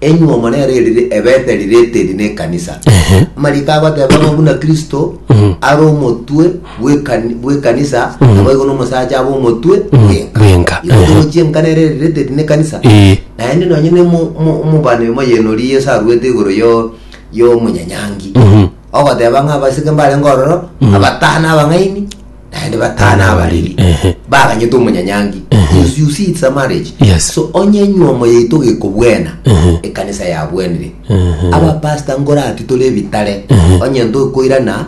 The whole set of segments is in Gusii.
enyuomo nero erire ebete rirete eri ne ekanisa Ehe. amariko agoteba ng'a buna kristo Mhm. are omotwe bw'ekani- bw'ekanisa Mhm. naboigo nomosacha abe omotwe Mhm. bwenka. Bwenka, Igo ehe. togochia enkana ere rirete eri ne ekanisa Ee. naende nonye ne omo- omo- omobani omo yenori yeso arwete igoro yo- yomonyanyangi Mhm. ogoteba ng'a abasike mbarenge ororo Mhm. abatano abang'aini naende batano abariri Ehe. baganyete omonyanyangi Yes, you see it's a marriage Yes. so onye nyuomo yaito gekobwena Ehe. ekanisa yabwenire Ehe. abapasta ngorati tore ebitare onye ntokoirana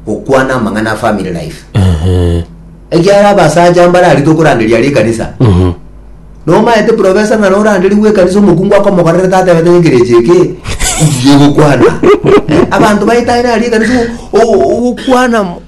gokwana amang'ana a family life Ehe. ekiara abasacha mbarari tokoranderia ari ekanisa Mhm. nomaete profesa ng'a noranderi gwekanisa omokungu akomokorerete atebete ngekerechi eke iye gokwana Eh, abanto baetane ari ekanisa ogokwana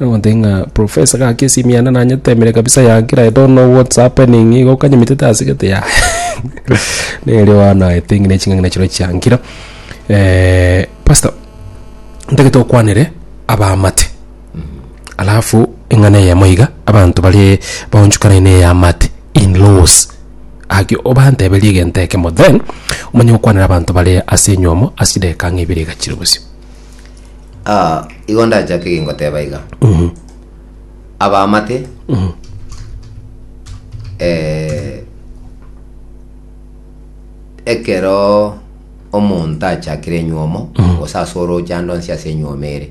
Nagotebi ng'a professor gaki esimu yane nanyetemire kabisa ya nkira I don't know what's happening igo okanyemitete ase gete yaya nere oanaete ng'ina ching'ang'ina chirobia chia nkira pastor ntagete okwanere abaamate alafu eng'ana eyemo iga abanto bare baonchokane na eyaamate in laws gaki obanteberie egento ekemo then omanye gokwanera abanto bare ase enyomo ase chidakika ng'a ibere iga chire bosio. Ah, igo ndachake gingoteba iga abamate eh, ekero omonto achakire enyuomo gose ase oroche ande onsi ase enyuomo ere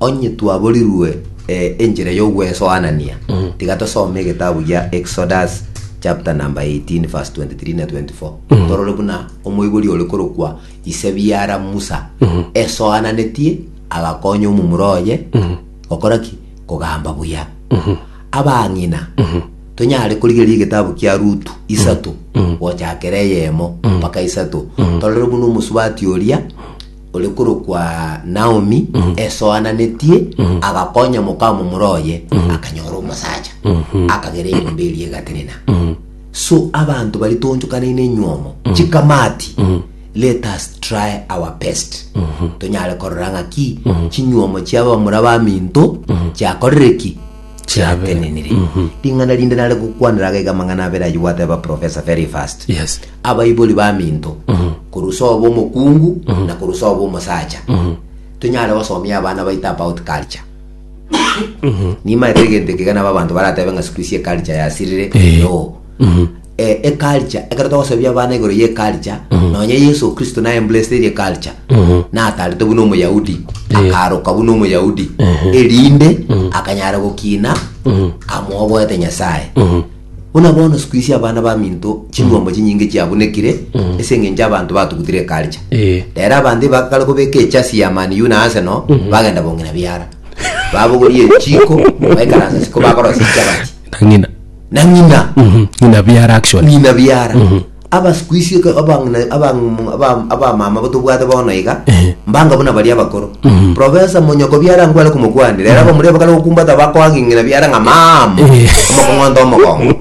Onye twaborirwe eh, enchera y'ogwesoanania, tiga tosome egetabu gia Exodus chapter number 18 verse 23 na 24 torore buna omoibori ore korokwa ise biara Musa esoananetie agakonya omomura oye gokora ki kogamba buya abang'ina tonyare korigeria egetabu kia Rutu isato gochakera eyemo mpaka isato torore buna omosubati oria ore korokwa Naomi, esoananetie, agakonya mokamomura oye, akanyora omosacha, akagera enyomba eria egatenena. So abanto bari toonchokanaine enywomo, chikamati, let us try our best tonyare korora ng'aki chinywomo chi'abamura baminto chiakorire ki chiatenenire ring'ana rinde nare gokwanera agaiga amang'ana abere ayio gwateba profesa very fast yes abaibori baminto korusa oba omokungu na korusa oba omosacha tonyare gosomia abana baito about culture nimaete egento ekega nabo abanto baratebe ng'a siku isi eculture yasirire Eh. no eh, eculture ekero togosabia abana igoro ye eculture nonya yesu kristo na embraced eri eculture natarete buna omoyahudi akaroka buna omoyahudi erinde akanyara gokina amoboete nyasaye buna bono siku isi abana baminto ching'ombo chinyinge chiabunekire ase eng'encho abanto batugutire eculture Eh. rero abanto ibakare kobeka echasi ya maniu na aseno bagenda bong'ina biara babogorie echiko baikaransa siko bakorosia chabati Tang'ina. na ng'ina Mhm. Ng'ina biara actually. ng'ina biara Mhm. aba siku ici eke- abang'ina- abang'umu- aba- abamama bo tobwate bono iga Ehe. mbanga buna baria abakoro Mhm. profesa monyoko biara nkware komokwanira era bamureba kare gokumbata bakoagi ng'ina biara ng'a mama Ehe. omokong'onta omogongo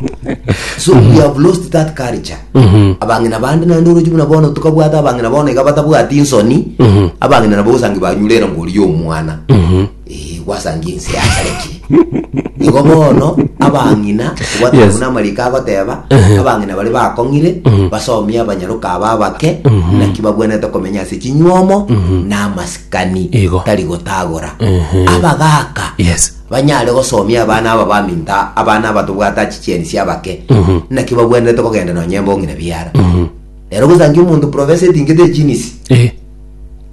so we have lost that culture Mhm. abang'ina bande naende orochi buna bono tokabwata abang'ina bono iga batabwati nsoni Mhm. abang'ina nabo osangi banyurera ngori y'omwana Mhm. Ee, gwasangia ense yasarekire. Igo bono abang'ina obwate Yes. buna amariko agoteba abang'ina bare bakong'ire basomie abanyaroka aba abake naki babwenete komenya ase chinywomo na amasikani Igo. tari gotagora abagaka Yes. banyare gosomia abana aba baminta abana aba tobwate achichieni sia abake naki babwenete kogenda nonye embong'ina biara rero gosangia omonto profesa etingete ejinisi Eh.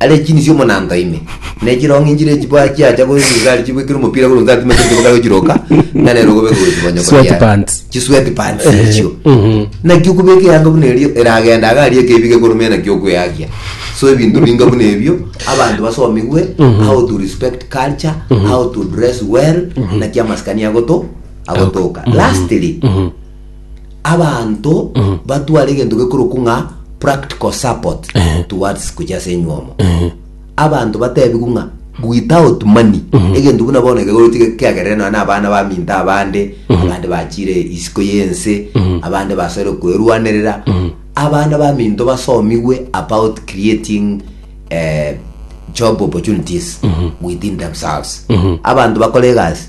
Are chini cia omonanto ime, ne chirong'i nchire chibaa chiacha korwa esibisari chibwekire omopira korwa onsi atima chionsi botari gochiroka, ng'a nere ogobe korwa esibonyo koria. Sweatpants. Chi sweatpants echio. Naki okobeka eyanga buna erio eragenda iga aria ekebiga ekorumenya naki okweakia. So ebinto binga buna ebio abanto basomigwe how to respect culture, how to dress well, naki amasikani agoto agotoka. Lastly, abanto batware egento gekorokwa ng'a practical support Ehe. towards gochia ase enywomo abanto batebigwe ng'a without money egento buna bono kegochi kiagerere nonya na abana baminto abande abande bachire isiko y'ense abande basore kwerwanerera abana baminto basomigwe about creating eh, job opportunities within themselves abanto bakore egasi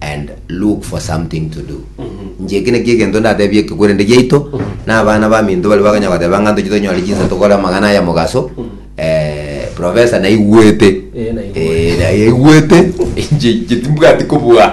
and look for something to do inche eki nakio egento ndatebie ekegwerende giaito na abana baminto baria bakanya goteba ng'a ntoche tonyore chinsa tokore amagana aya mogaso eh, professor naigwete Eh, naigwete. Eh, na- yaigwete inche inche timbwati kobua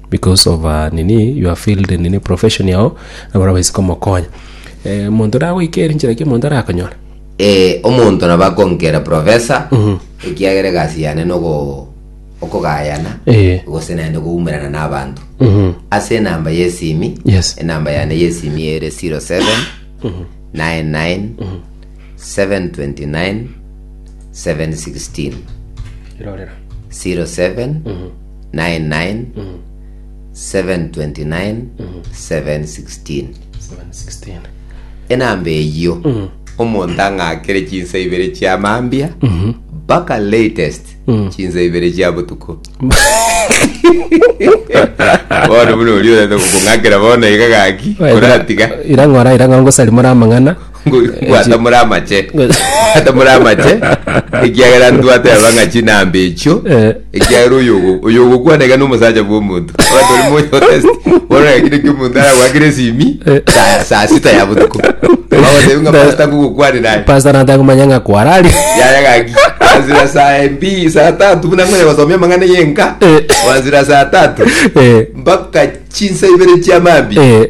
Because of nini your field nini profession yao nabarabwo baise komokonya. Eh, omonto nagoika ere nchera ki omonto arakonyore? Eh, omonto nabo akonkera professor ekiagera egasi yane nogo okogayana Eh. gose naende goumerana n'abanto Mhm. ase enamba y'esimi Yes. enamba yane y'esimi ere 07 99 729 716 Irorera. 07 99 Mm. 729 716 716. enamba eyio Mm. omonto ang'akere chinsa ibere chia mambia Mhm. mpaka latest Mm. chinsa ibere chia botuko bono buna oria orete kong'akera bono iga gaki oratiga irang'ora irang'ora ngosarimora amang'ana Gwatomora amache. Gwatomora amache. Ekiagera ntwate abang'a chinambe echio. Eh. Ekiagera oyo ogo. Oyo ogo kwana iga nomosacha bwa omonto. Abanto bari moyo test. Bono ekire kio omonto ara gwakire esimi. Eh. Saa saa sita ya botuko. Bagotebi ng'a pasta gugu kwani naye. Pastor nataka kumanya ng'a kwarari. Yaya gaki. Azira saa mbi saa tatu buna ngonya gosomia amang'ana yenka. Eh. Wazira saa tatu. Eh. Mpaka chinsa ibere chia mambi. Eh.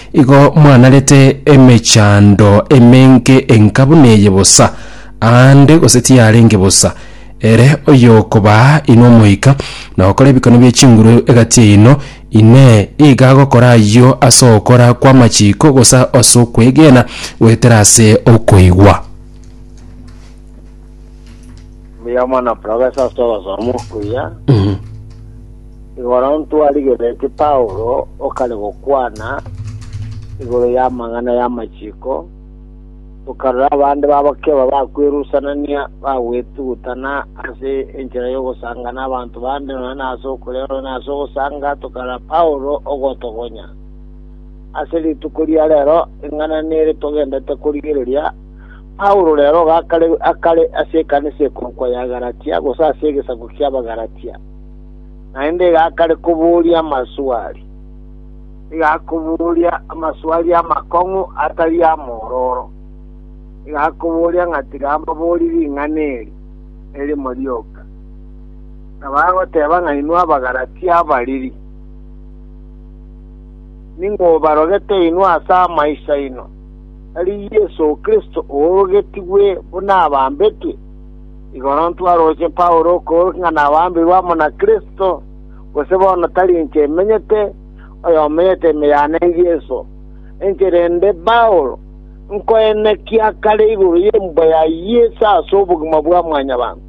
Igo mwanarete emechando emenge enka buna eye bosa, aande gose tiyarenge bosa. Ere oyokobaa inwe omoika, na ogokora ebikone bie chinguru egati yaino, Inee, iga agokora ayio ase ogokora kw'amachiko gose ase okwegena goetera ase okoigwa? Mbuya mono profesa ase obosomo okuya. Mhm. Igoro ntwarigereti Paulo okare gokwana igoro y'amang'ana y'amachiko, tokarora abande babakeba bakwerusanania bagwetugutana ase enchera y'ogosanga n'abanto bande nonya na ase okorera nonya na ase ogosanga, tokarora Paulo ogotogonya. Ase rituko ria rero, eng'ana nere togendete korigereria Paulo rero gakarerwa akare ase ekanisa ekorokwa ya Galatia, gose ase egesaku ki'Abagalatia, naende gakare koboria amaswali. Igakoboria amaswali amakong'u atari amororo. Igakoboria ng'a tiga mbabori ring'ana eri erimo rioka. Na bagoteba ng'a inwe Abagalatia abariri, ning'o obarogete inwe ase amaiso aino? Tari Yeso Kristo oorogetigwe buna abambetwe? Igoro ntwarooche Paulo okoorokia ng'a nabambirwe amo na Kristo, gose bono tari inche menyete, oyomenyete ime yane n'Yeso. Inche rende Paulo, nkoenekia kare igoro y'ebuba ya Yeso ase obogima bwa mwanyabanto.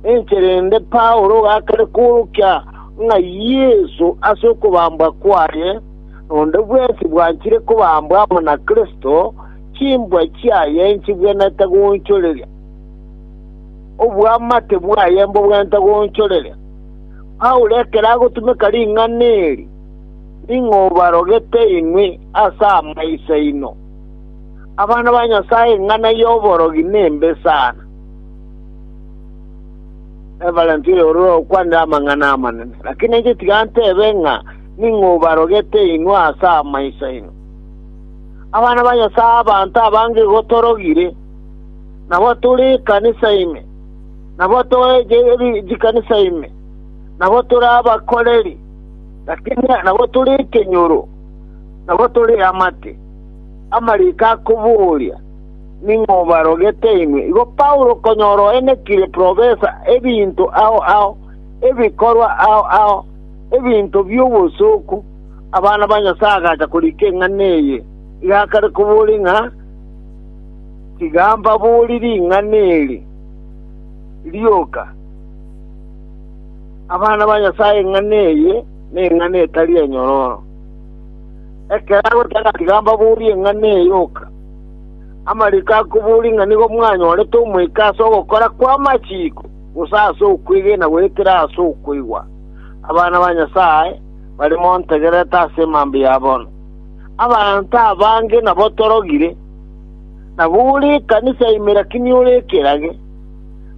Inche rende Paulo ogakare koorokia ng'a Yeso ase okobambwa kwaye, Nonde bwensi bwanchire kobambwa amo na Kristo, chimbwa chiaye nchibwenerete goonchoreria, oboamate bwaye mbobwenerete goonchoreria. Paulo ekero agotumeka ring'ana eri, ning'o obarogete inwe ase amaiso aino? Abana ba Nyasae eng'ana y'oborogi nembe sana. Rev. Ororo okwanire amang'ana amanene, lakini inche tiga ntebe ng'a ning'o obarogete inwe ase amaiso aino? Abana ba Nyasae abanto abange igo torogire, nabo tore ekanisa ime, nabo toe chikanisa ime, nabo tore abakoreri, lakini nabo tore ekenyoro, nabo tore amate, amariko akoboria, ning'o obarogete inwe? Igo Paulo okonyora oenekire profesa ebinto ao ao, ebikorwa ao ao, ebinto bi'obosooku, abana ba Nyasae agacha korika eng'ana eye, iga akare koboria ng'a, Tiga mbaborie ring'ana eri rioka, Abana ba Nyasae eng'ana eye neng'ana etari enyororo. Ekero agoteba ng'a tiga mbaborie eng'ana eye yoka, amariko akoboria ng'a nigo mwanyorete omoika ase ogokora kw'amachiko? gose ase okwegena goetera ase okoigwa. Abana ba Nyasae bare montegerete ase emambe ya bono. Abanto abange nabo torogire, nabo ore ekanisa ime lakini ore ekerage,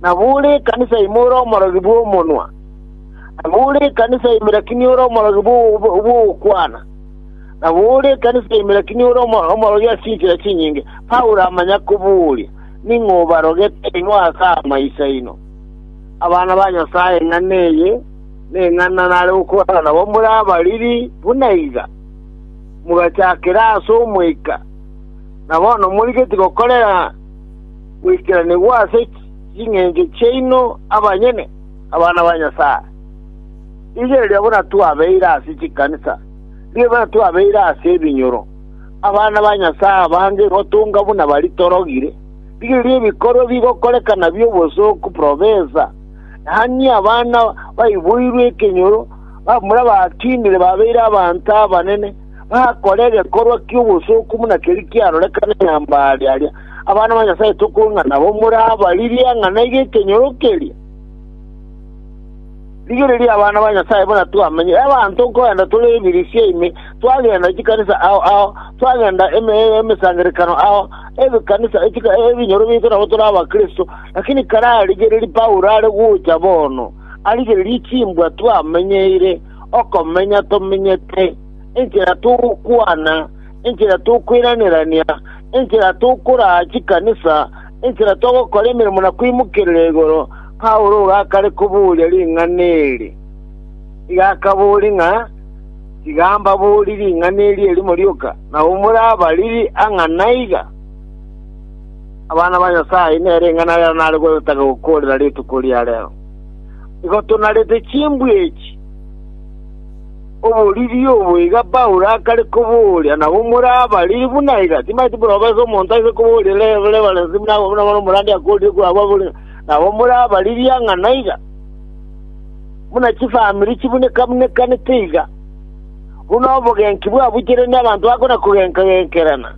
nabo ore ekanisa ime ore omorogi bw'omonwa, nabo ore ekanisa ime lakini ore omorogi bw'ogokwana, nabo ore ekanisa ime lakini ore omorogi ase chinchera chinyinge. Paulo amanya kobooria, Ning'o obarogete inwe ase amaiso aino, abana ba Nyasae? Ing'ana eye neng'ana nare gokorana nabo more abariri buna iga, mogachakera ase omoika, na bono morigeti gokorera goikeranigwa ase ching'encho chiaino abanyene, abana ba Nyasae. Rigereria buna twabeire ase chikanisa, rigereria buna twabeire ase ebinyoro. Abana ba Nyasae abange igotunga buna baria torogire. Rigereria ebikorwa bigokorekana bi'obosooku profesa, yaani abana baiboirwe ekenyoro, bamura batinire babeire abanto abanene, bakora egekorwa ki'obosooku buna keria kiarorekane nyambare aria. Abana ba Nyasae tokong'a nabo morabaririe ang'ana iga ekenyoro keria. Rigereria abana ba Nyasae buna twamenye. Abanto nkorende tore ebirisia ime, twagenda chikanisa ao ao, twagenda emesangererekano ao, ebikanisa ebinyoro biaito nabo tore abakristo. Lakini kare arigereria Paulo are gocha bono, arigererie chimbwa twamenyeire, okomenya tomenyete, enchera togokwana, enchera tokoiranerania, enchera tokoraa chikanisa, Enchera togokora emeremo na koimokerera igoro, Paulo iga akare koboria ring'ana eri. Iga akaboria ng'a, Tiga mbaborie ring'ana eri erimo rioka, nabo more abariri ang'a naiga? Abana ba Nyasae, nere ing'ana rero nare gotaka gokoorera rituko ria rero. Igo tonarete chimbwe echi. Oboriri obo iga Paulo akare kobooria, nabo more abariri buna iga, timaeti buna obase omonto aise kobooria reverensi buna agwo, buna bono omorandi akoorire kwabo abore, nabo more abariri ang'ana na iga, buna chifamiri chibuneka-bunekanete iga, buna obogenki bwabucherani abanto bakona kogenka-genkerana,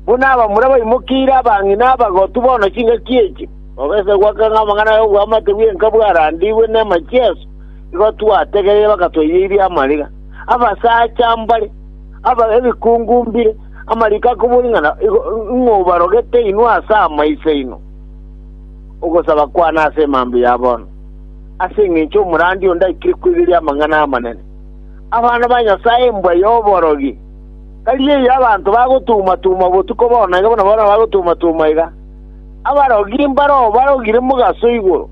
buna abamura baimokeire abang'ina abagotu bono chingaki echi, obase goaka ng'a amang'ana ay'obwamate bw'enka bwarandigwe nemache aso. Igo twategereire bagatoiyeria amariga, abasacha mbare, aba ebikungu mbire, amariko akoboria ng'a igo ing'obarogete inwe ase amaiso aino, ogosaba kwane ase emambia ya bono, ase engencho omorandi onde aikire koigeria amang'ana amanene. Abana ba Nyasae mbwa y'oborogi! Tari eyio abanto bagotuma-tuma botuko bono iga buna bono bagotuma-tuma iga, abarogi mbare obarogire mogaso igoro.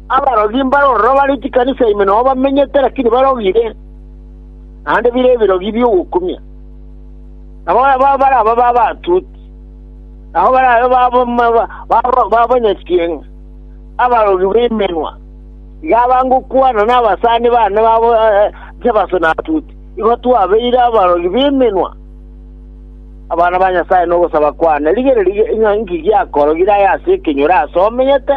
Abarogi mbare ororo bare chikanisa ime nao bamenyete, lakini barogire, naende bire ebirogi bi'ogokumia. Nabo baraba b'abatuti, nabo barabe b'abanyasieng'a, abarogi b'emenwa, iga abange okwana nabasani bane babo Jebaso na Atuti. Igo twabeire abarogi b'emenwa abana ba Nyasae nogosaba kwane. Rigereria ng'a inki giakorogire aye ase ekenyoro aase omenyete.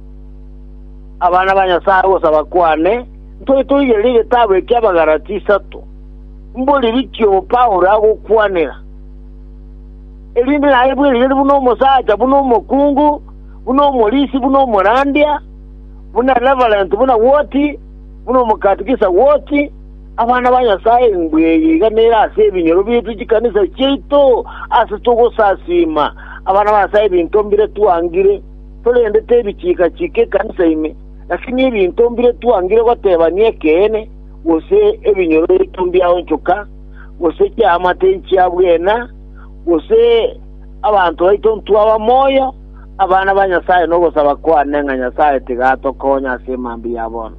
Abana ba Nyasae ogosaba kwane, ntore toigere egetabu eki'Abagalatia isato, mbu ririkio obo Paulo agokwanera, erinde naye bwe rigari buna omosacha, buna omokungu, buna omorisi, buna omorandia, buna reverent, buna woti, buna omokatikisa woti, abana ba Nyasae mbuya eye iga nere ase ebinyoro biaito chikanisa chiaito ase togosasiima abana ba Nyasae ebinto mbire twangire. Korende tebichiika-chiika ekanisa ime, naki nebinto mbire twangire gotebania ekeene, gose ebinyoreito mbiaonchoka, gose chiamate nchia bwena, gose abanto baito ntwaba moyo, abana ba Nyasae nogosaba kwane ng'a Nyasae tiga atokonye ase emambia ya bono.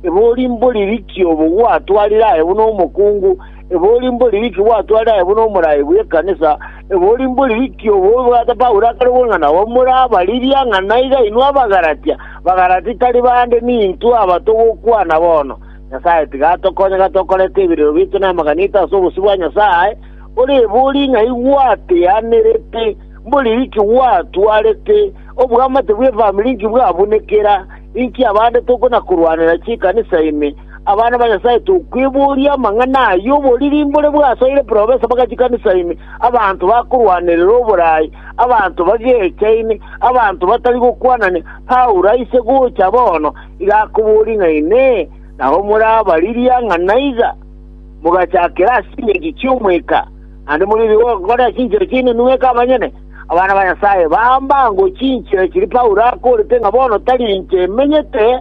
Ebori mbori rikia obo gwatwarire aye buna omokungu, Ebori mbori riki gwatware aye buna omorai bw'ekanisa? Ebori mbori riki obo obwate Paulo akare gokora ng'a nabo morabaririe ng'a naiga inwe Abagalatia? Bagalatia tari bande, nintwe aba togokwana bono. Nyasae tiga atokonye ng'a tokorete ebireero biaito namaganito ase obosio bwa Nyasae. Ore ebori ng'a igwateanerete mbori riki gwatwarete obwamate bw'efamiri inki bwabunekera, inki abande tokona-korwanera chi'ekanisa ime, Abana ba Nyasae tokweboria amang'ana ayio oboriri mbore bwasoire profesa bagachikanisa ime, abanto bakorwanerera oboraai, abanto bagechaine, abanto batari gokwanania. Paulo aise gocha bono iga akoboria ng'a inee, nabo morabariria ng'a naiga mogachakera ase chingencho chi'omweka, naende morigetie gokora ase chinchera chiaino nweka abanyene? Abana ba Nyasae bambango chinchera chiria Paulo akorete ng'a bono tari inche emenyete,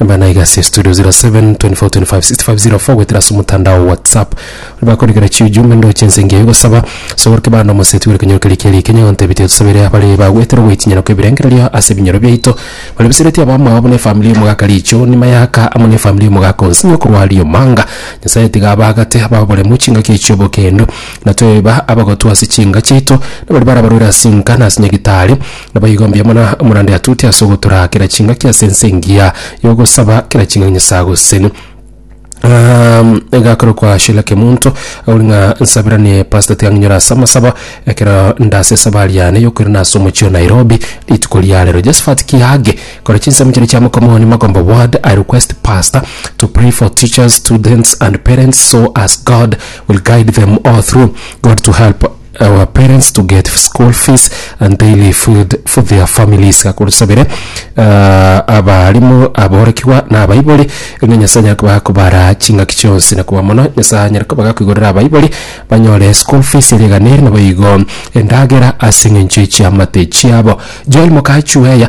Nabana iga ase estudio 0724256504 goetera ase omotandao whatsapp ori bakorikera chiujumbe ndoche ense engiya gosaba sogoroke bande omoseti bore kenyoro keria kiarege kenya gontebia ati tusabere abare bagoetera goitinyana kw'ebirengererio ase ebinyoro biaito bare bisereti abamwabo buna efamili y'omogaka riicho ni mayaka amo n'efamili y'omogaka onsi ng'a okorwa riomanga nyasaye tiga abaagate ababoremu chingaki echi obokendo na tweba abagotwa ase chinga chiaito na baria barabarwera ase enka na ase nyagitari Naboigo mbuya mono omorande atute ase ogotura kera chingaki ase ense engiya y'ogosaba kera chingaki Nyasae agoseseni. Um, igakorokwa Sheila Kemunto ori ng'a nsabiranie Pastor tiga ng'inyore ase amasaba ekero ndase esabari yane yokoirana ase omochie o Nairobi rituko ria rero. Josephat Kiage kore chinsemo chiria chia Mokomoni Magomba Ward, I request Pastor to pray for teachers, students and parents so as God will guide them all through. God to help our parents to get school fees and daily food for their families gakorusabire uh, abarimu aborekigwa na abaibori ng'a nyasaye anyare koba akobara ching'aki chionsi na koba mono nyasaye anyare koba gakoigorera abaibori banyore school fees ere eganeri nabo igo endagera ase eng'encho echiamate chiabo joel mokachueya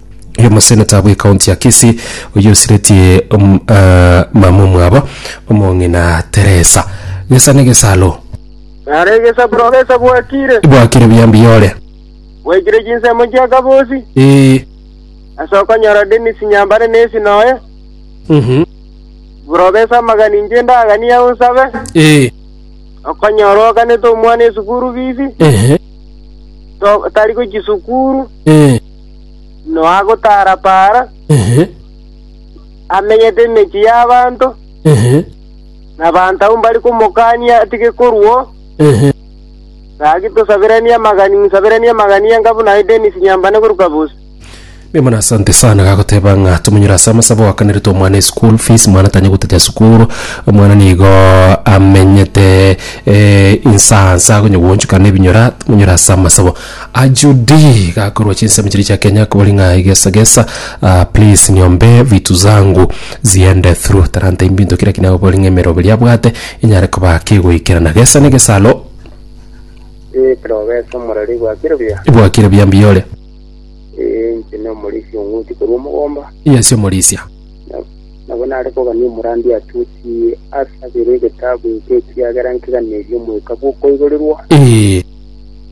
Oyo omoseneta bw'ekaunti ya Kisii oyio osiretie um, eh, mama omwabo omong'ina Teresa gesa negesalo Nare egesaburo gesa bwakire, bwakire buyambiyore bwaikire chinsemo chia kabosi, ee ase okonyora Dennis Nyambare nesi noye, mhm buro gesa amagani inche ndaganie au nsabe, ee okonyora oganete omwana esukuru bibi, ehe to- tari gochia sukuru, ee noagotaara-paara, Ehe, amenyete emechie y'abanto, ehe, na abanto abwo mbare komokania atige korua oo. ehe. Gaki tosaberanie amagani, ng'saberanie amagani enga buna aye Dennis Nyambane korwa Kabusi. Mbuya mono asante sana gagoteba ng'a tomonyore ase amasabo oakaneretwe omwana eschool fees mwana tanya gotachia sukuru omwana nigo amenyete eh, insa nsa akonye gwoonchoka nebinyora tomonyore ase amasabo Ajudi gakorwa chinsemo chiria chia Kenya kobori ng'a egesa gesa ah, please niombe vitu zangu ziende through taranta imbinto kira kinya kobori ng'a emerobo eria abwate enyare koba kegoikerana gesa ne gesalo Ee, ekero ogesa omorero igwakire buya. ibwakire buya mbiyore Ee, inche na omorisia ong'uti korwa omogomba. yesi omorisia Nabo nare kogania omorandia atuti asabere egetabu eke ekiagera nkeganerie omoika bw'okoigorirwa. Ee,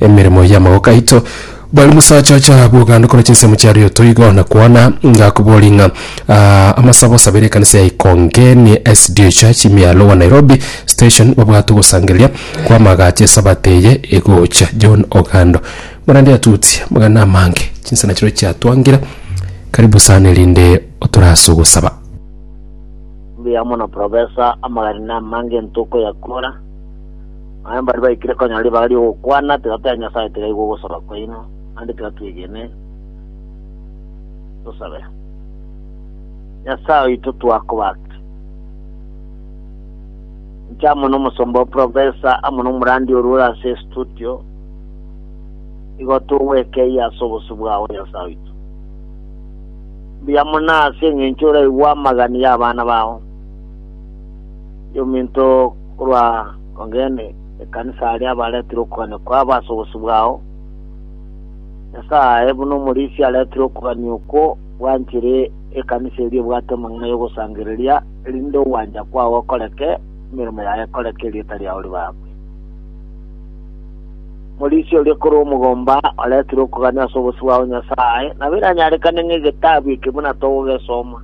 emeremo y'amaboko aito. Bwari mosacha ocha bw'oganda korwa chinsemo chia rioto igo, na kwana ngakoboria ng'a ah, amasabo osabere ekanisa ya Ikongeni SDA Church imia Lower Nairobi Station babwate ogosangereria kw'amagacho esabato eye egocha. John Ogando Morandi atuti amagana amange chinsa nachireo chiatwangire. Karibu sana erinde otorase ogosaba. Mbuya mono professor, amagana amange ntokoyakora. Aye mbaria baikire konyora ribaga ri'ogokwana ati, Tata ya Nyasae, tigaigwe ogosaba kwaino, naende tiga twegene, tosabe. Nyasae oito twakobake. Inche amo n'omosomba o Profesa amo n'omorandi orwo ore ase estudio, igo togwekeyia ase obosio bwao, Nyasae oito. Mbuya mono ase eng'encho oraigwe amagani y'abana bao, yominto korwa Ong'eene ekanisa aria abareetire okogania kwabo ase obosio bwao, Nyasae aye buna omorisia areetire okogania okwo bwanchire ekanisa eria ebwate amang'ana y'ogosangereria, erinde ogwancha kwao gokoreke, emeremo yao ekoreke, erieta riao ribaakwe. Omorisia oria korwa omogomba oreetire okogania ase obosio bwao Nyasae, nabo eranyarekane ng'egetabu eke buna togogesoma.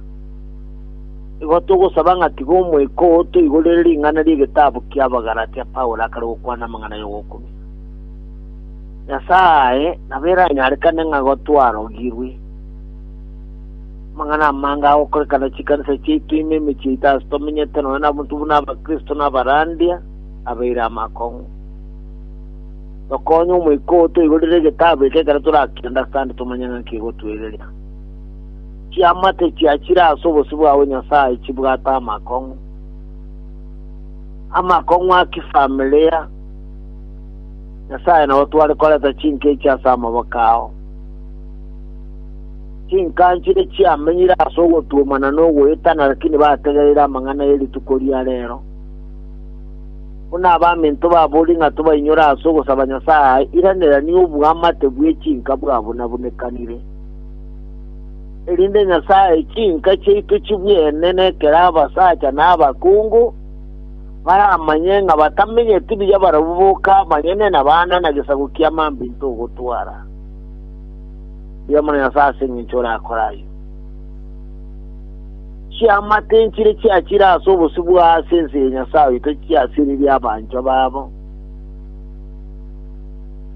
Igo togosaba ng'a tiga Omoika oo toigorere ring'ana ri'egetabu ki'Abagalatia Paulo akare gokwana amang'ana y'ogokumia. Nyasae nabo eranyarekane ng'a igo twarogirwe. Amang'ana amange agokorekana chikanisa chiaito ime emechie yaito ase tomenyete nonya nabanto buna Abakristo na abarandia abeire amakong'u. Tokonye Omoika oo toigorere egetabu eke ekero torakende asande tomanye ng'a nki egotwereria. chiamate chiachire ase obosio bwao Nyasae chibwate amakong'u, amakong'u a kifamilia, Nyasae nabo tware koreta chinka echi ase amaboko ao. Chinka nchire chiamenyire ase ogotuomana na ogoetana, lakini bategereire amang'ana ye rituko ria rero. Buna abaminto babori ng'a tobainyore ase ogosaba Nyasae, iranera nigo oboamate bwe chinka bwabunabunekanire. erinde Nyasae chinka chiaito chibwene nekere abasacha na abakungu, baramanye ng'a batamenyeti buya barabwo boka banyene na bana na gesaku kia mambinto ogotwara. Mbuya mono Nyasae ase engencho orakore ayio. Chiama tinchire chiachire ase obosio bwa ase ense ya Nyasae oito chiasiririe abanchwa babo.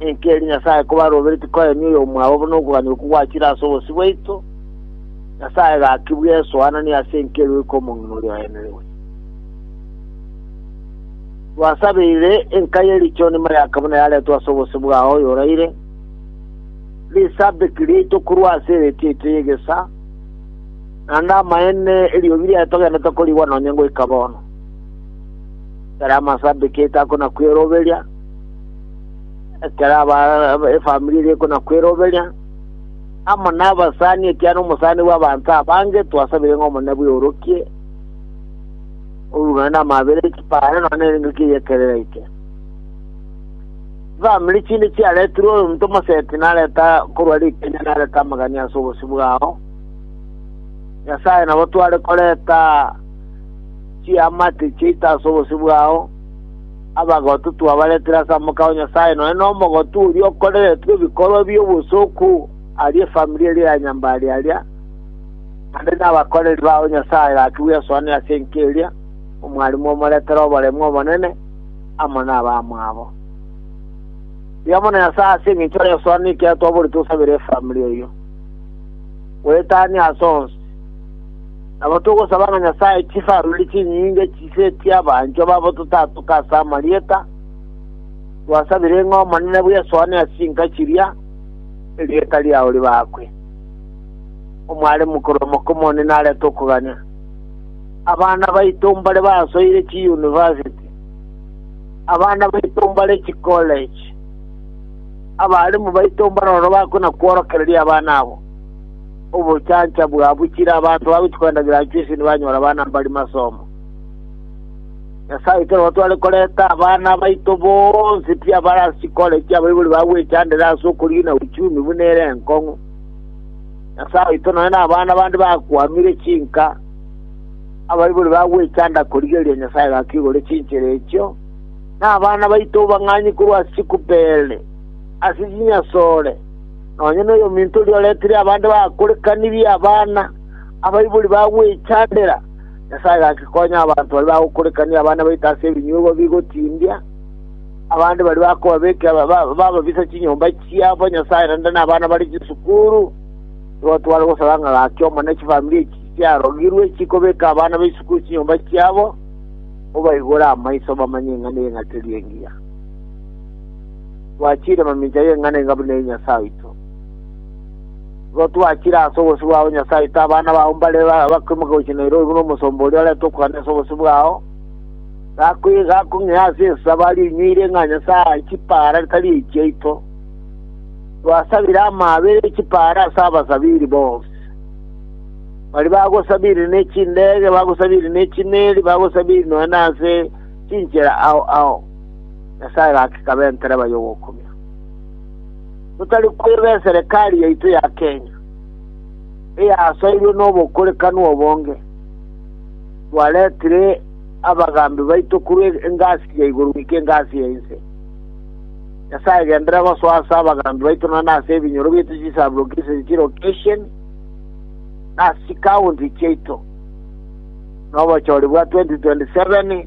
Ninki eri Nyasae kobaroberetie koemia oyomwabo buna okogania okwo gwachire ase obosio bwaito? Nyasae gaki bw'esoananie ase enki erueirwe kw'omong'ina oria oenerigwe. Twasabeire enka ye richoni mayaka buna yaretwe ase obosio bwao oyoraire, risabeki riaito korwa ase eretio yaito y'egesa, naende amaene eriogi riaye togenderete korigwa nonya ngoika bono. Tari amasabeki yaito akona kweroberia, ekero aba- efamiri eria ekona kweroberia amo nabasani ekiana omosani bw'abanto abange twasabire ng'a omone bweorokie orurana n'amabere ekipare nonya nerenge kieyekerera eke famiri chinde chiaretirwe omonto omoseti nareta korwa rikenya nareta amagani ase obosi bwao nyasaye nabo tware koreta chiamate chiaito ase obosi bwao Abagotu twabaretire ase amoka o Nyasae nonye nomogotu oria okoreretwe ebikorwa bi'obosoku aria efamiri eria ya Nyambari aria, naende nabakoreri bao Nyasae gaki bwesoani ase enka eria, omwarimu omoretere oboremu obonene amo nabamwabo. Rigia mono Nyasae ase engencho y'esoani ekero twaborete osabere efamiri eyio. Goetania ase onsi. Nabo togosaba ng'a Nyasae chife arore chinyinga chise chi'abanchwa babo totatoka ase amarieta twasabire, ng'a Omonene bwesoane ase chinka chiria, erieta riao ribaakwe. Omware mokorua Mokomonene arete okogania. Abana baito mbare basoire chiyunivasiti, abana baito mbare chikoleji, abaalimu baito mbare ororo bakona-kworokereria abana abo. Obosancha bwabuchire, abanto bagochia koendaneria anchwe ase nibanyore abana mbari masomo. Nyasae oito nabo tware koreta abana baito bonsi pi abare ase chikore chi'abaibori bagwechandera ase okorina uchumi buna ere enkong'u. Nyasae oito nonya nabana bande bakwamire chinka, abaibori bagwechanda korigereria Nyasae gaka igoro chinchera echio, na abana baito bang'anye korwa ase chikupere, ase chinyasore, Nonya noyominto oria oretire abande bakorekanirie abana, abaibori bagwechandera, Nyasae gaki konya abanto baria bagokorekania abana baito ase ebinyuegwa bigotindia, abande baria bakobabekera bababisa chinyomba chiabo, Nyasae naende nabana bare chisukuru. Nigo tware gosaba ng'a gaki Omonene chifamiri echi chiarogirwe chikobeka abana be chisukuru chinyomba chiabo, obaigore amaiso bamanye ing'ana y'eng'aterio engiya. twachiire mamincha y'eng'ana enga buna eye Nyasae oito. Igo twachiire ase obosio bwao Nyasae oito abana bao mbare bakoimoka gochia Nairobi buna omosomba oria oreta okogania ase obosio bwao gakong'ea ase ensabo aria oinyweire ng'a Nyasae ahae chipaara tari echiaito. Twasabire amaabera e chipaara ase abasabiri bonsi. Bari bagosabiri ne chindege, bagosabiri ne chimeeri, bagosabiri nonya nase chinchera ao ao. Nyasae gaki kabe entereba y'ogokumia. Totari kweba eserekari yaito ya Kenya, eyasoirwe n'obokorekanu obonge, twaretire abagambi baito korwa engasi ya igoro goika engasi ya inse. Nyasae gendera gosoa ase abagambi baito nonya nase ebinyoro biaito chisabrokisheni chirokesheni na ase chikaunti chiaito nobochori bwa 2027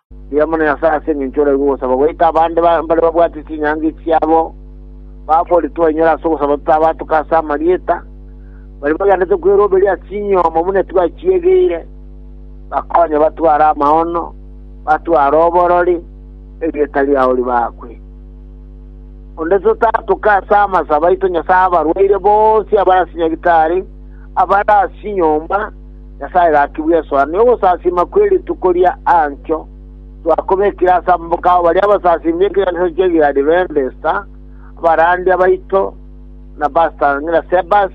Rigia mono Nyasae ase engencho oraigwe ogosaba goika abande mbare babwate chinyangi chiabo, bafore twainyore ase ogosaba totabatuka ase amarieta, baria bagenderete kweroberia ase inyomo buna etwachiegeire, bakonye batware amaono, batware oborori, erieta riao ribakwe. Onde totatuka ase amasabo aito Nyasae abarwaire bonsi abare ase nyagitari, abare ase inyomba, Nyasae gaki bw'esoa, na ogosasiima kwe rituko ria Antio, twakobekire ase amaboko ao baria abasasiimi b'ekeganisa ki'egari b'embesta, abarandia baito, na Basta, ng'ina Sebas,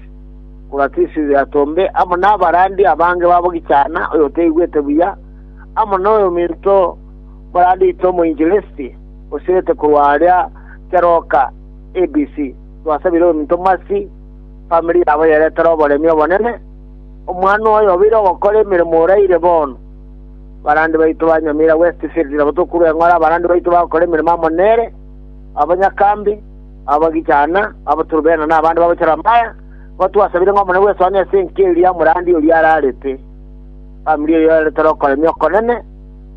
oratisi y'atombe, amo n'abarandia abange babo gichana, oyotaigwete buya, amo noyominto morandia oito omoinjilisti, osirete korwa aria Teroka, ABC. Twasabire oyominto Mersi, famiri yabo yerete roboremi obonene. Omwana oye obeire ogokora emeremo oraire bono. Abarandi baito ba Nyamira Westfield nabo tokure eng'ora abarandi baito bagokora emeremo amo nere, abanyakambi, abagichana, abaturubena na abande bagochora amaya, nigo twasabire ng'a Omonene bw'esoania ase enki eria omorandi oria ararete. Famiri eye yarentire okoremia okonene,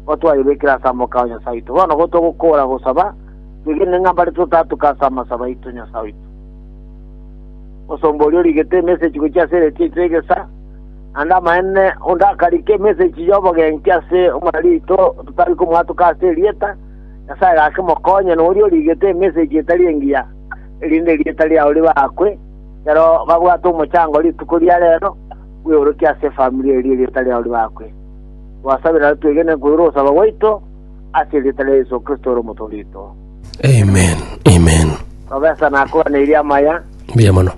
nigo twayebekire ase amaboko ao Nyasae oito. Bono igo togokoora gosaba, twegenire ng'a mbare totatuke ase amasabo aito Nyasae oito. Omosomba oria origete emesegi gochia ase eretio ri'egesa, naende amaene onde akarika emesegi y'obogenki ase omorarito otari komwatoka ase erieta, Nyasae gake mokonye noria origete emesegi etari engiya, erinde erieta riao ribaakwe, ekero babwate omochango rituko ria reero, bweorokie ase efamiri eria erieta riao ribaakwe. Twasabera twegene koigwa ogosaba gwaito, ase erieta ria Yeso Kristo ore Omotoorwa oito. Amen, amen. Professor nakwaneirie amaya. Mbuya mono.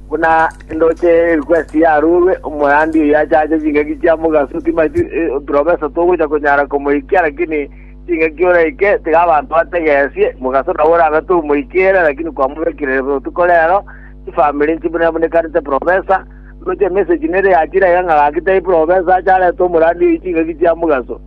Buna ndoche request yarurwe omoyandi oyo achache chingaki chia mogaso timati eh, professor togocha konyara komoikia lakini chingaki oraike tiga abanto bategesie mogaso nawe orabe tomoikere lakini kwamobekire botuko rero chifamili nchibune bunekanete professor ndoche message nere yachira iga ng'a gaki tai professor acharete omorandi oyo chingaki chia mogaso